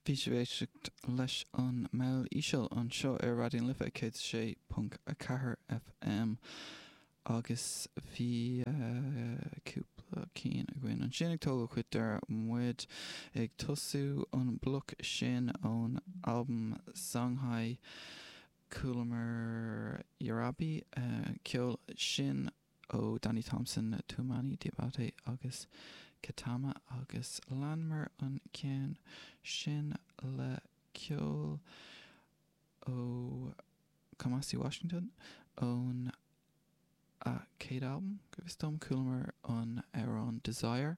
Bhí sibh ag éisteacht leis an mball íseal anseo ar Raidió na Life 106.4 FM agus bhí cúpla cinn againn ansin ag tógáil chuig deireadh muid ag tosú an bloic sin ón albam Songhai Chualamar Jarabi ceol sin ó Danny Thompson, Toumani Diabaté agus Ketama agus leanamar an ceann sin le ceol ó Kamasi Washington óna céad albam, go bhfios dom, chualamar an amhrán Desire.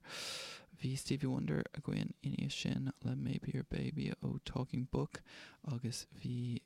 Bhí Stevie Wonder againn ina dhiaidh sin le Maybe Your Baby ó Talking Book agus bhí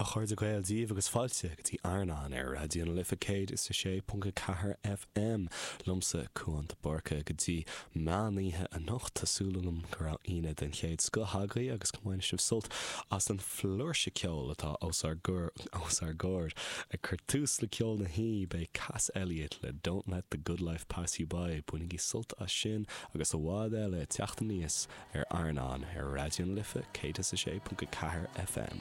a chairde Gael, Dia daoibh agus fáilte go dtí Airneán ar Raidió na Life 106.4 FM. Liomsa Cuán de Búrca go dtí meán oíche anocht. Tá súil agam go raibh Aoine den chéad scoth agaibh agus go mbainfidh sibh sult as an flúirse ceoil atá os ár gcomhair. Ag cur tús le ceol na hoíche beidh Cass Elliot le Don't Let The Good Life Pass You By. Bainigí sult as sin agus i bhfad eile ag teacht aníos ar Airneán ar Raidió na Life 106.4 FM.